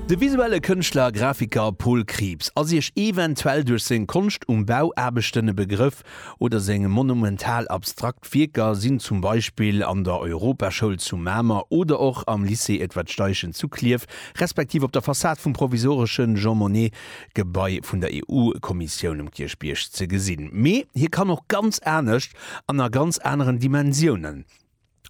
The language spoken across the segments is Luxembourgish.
De visuelle Kënschtler a Grafiker Paul Krieps ass Iech eventuell duerch seng Konscht um Bauaarbechten e Begrëff, oder seng monumental abstrakt Wierker sinn zum Beispill an der Europaschoul zu Mamer oder och am Lycée Edward Steichen zu Klierf respektiv op der Fassad vum provisoresche Jean Monnet Gebai vun der EU-Kommissioun um Kierchbierg ze gesinn. Mee hie kann och ganz anescht an a ganz aneren Dimensiounen.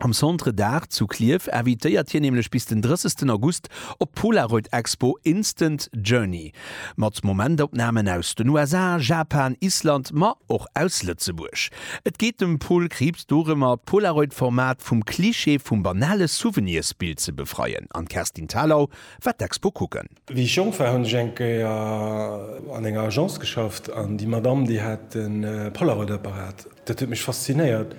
Am Centre d'Art zu Klierf invitéiert hien nämlech bis den 30 August op d'Polaroid Expo Instant Journey mat Momentopnamen aus den USA, Japan, Island, ma och aus Lëtzebuerg. Et geet dem Paul Krieps dorëmmer, d'Polaroid-Format vum Klischee vum banale Souvenirsbild ze befreien an d'Kerstin Thalau war d'Expo kucken. Wéi ech jonk war, hunn ech eng Kéier an enger Agence geschafft an déi Madamm, déi hat e Polaroid-Apparat. Dat huet mech faszinéiert,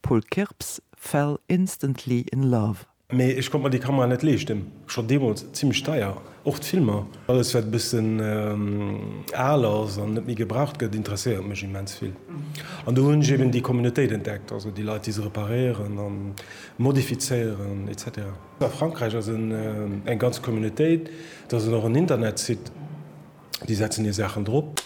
Paul Kirps fell instantly in love. Mee ech konnt mer déi Kamera net leeschten, schon deemols zimmlech deier, och d'Filmer. Alles wat e bëssen al ass an net méi gebraucht gëtt interesséiert mech immens vill. An do hunn ech eben déi Communautéit entdeckt, also déi Leit déi se reparéieren a modifizéieren etc. A Frankräich ass en eng ganz Communautéit, et ass en och en Internetsite, déi setzen hir Saachen drop.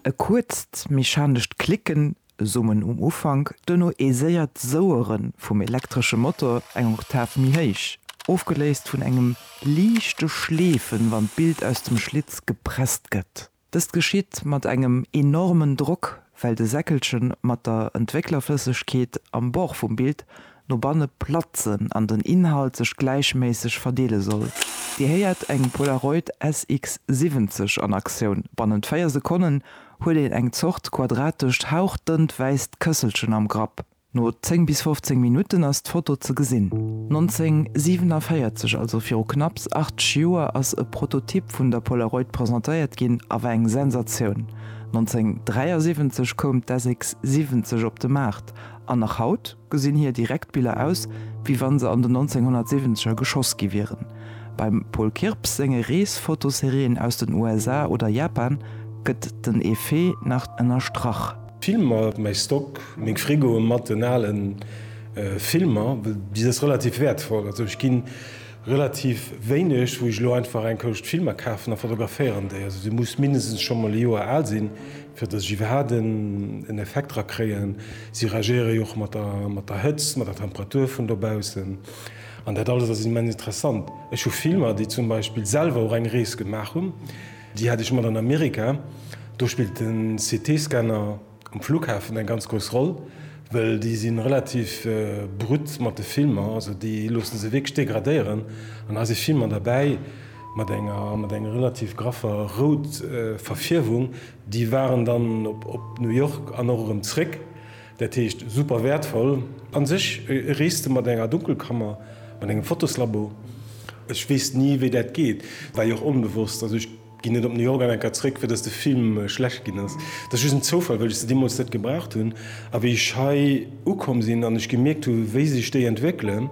E kuerzt mechanescht Klicken Summen um Ufank, duerno ee séiert Souere vum elektresche Motor eng Oktav méi héich, ofgeléist vun engem liichte Schleefen, wann d'Bild aus dem Schlitz gepresst gëtt. Dëst geschitt mat engem enormen Drock, well de Säckelche mat der Entwécklerflëssegkeet am Bord vum Bild no banne platzen an den Inhalt sech gläichméisseg verdeele soll. Dir héiert eng Polaroid SX 70 an Aktioun. Bannent 4 Sekonnen huet een eng Zort quadratescht hauchdënnt wäisst Kësselchen am Grapp. No 10 bis 15 Minutten ass d'Foto ze gesinn. 1947, also viru knapps 80 Joer, ass e Prototyp vun der Polaroid presentéiert ginn a war eng Sensatioun. 1973 koum d'SX 70 op de Maart. An nach haut? Gesinn hir direkt Biller aus wéi wann se an den 1970 er geschoss gi wieren. Beim Paul Kirps senge Reesfotoserien aus den USA oder Japan gëtt den Effet nach ënnerstrach. Filmer, mäi Stock, meng Frigoe matten ale Filmer, bis ass relativ wäertvoll. Also ech ginn relativ wéineg wou ech elo einfach eng Kousch Filmer kafen a fotograféieren déi. Also se muss mindestens scho mol e Joer al sinn. Fir dass ech iwwerhaapt en Effekt dra kréien, si reagéiere jo och mat der Hëtzt, mat der Temperatur vun dobaussen. An dat alles ass immens interessant. Ech hu Filmer, déi zum Beispill selwer och eng Rees gemaach hunn, déi hat ech mat an Amerika. Do spillt de CT-Scanner um Flughafen eng ganz grouss Roll, well déi si relativ brut mat de Filmer, also déi loosse se wierklech degradéieren. An da si Filmer derbäi. mat enger relativ graffer rout Verfierwung, déi waren dann op New York an och erëm zréck, dat heescht super wäertvoll. A sech e Reeste mat enger Dunkelkammer, mat engem Fotoslabo, ech weess ni wéi dat geet, war jo och onbewosst, also ech ginn net op New York an enker zréck fir datt de Film schlecht ginn ass, dat ass just en Zoufall, well ech se deemools net gebraucht hunn a wéi ech hei ukomm sinn an ech gemierkt hu wéi sech déi entwéckelen,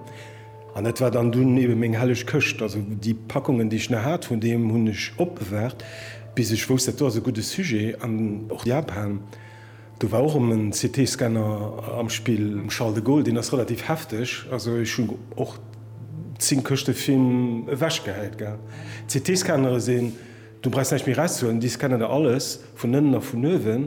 An dat war dann dunn eben meng helleg Këscht. Also déi Packungen, déi ech nach hat vun deem, hunn ech opbewaart, bis ech wousst, dat do ass e gudde Sujet. An och Japan, do war och erëm en CT-Scanner am Spill, um Charles de Gaulle, deen ass relativ hefteg. Also ech hunn och 10 Këschte Film ewechgehäit, gell. CT-Scannere sinn, do brauchst näischt méi erauszehuelen, déi scannen der alles vun ënnen a vun uewen.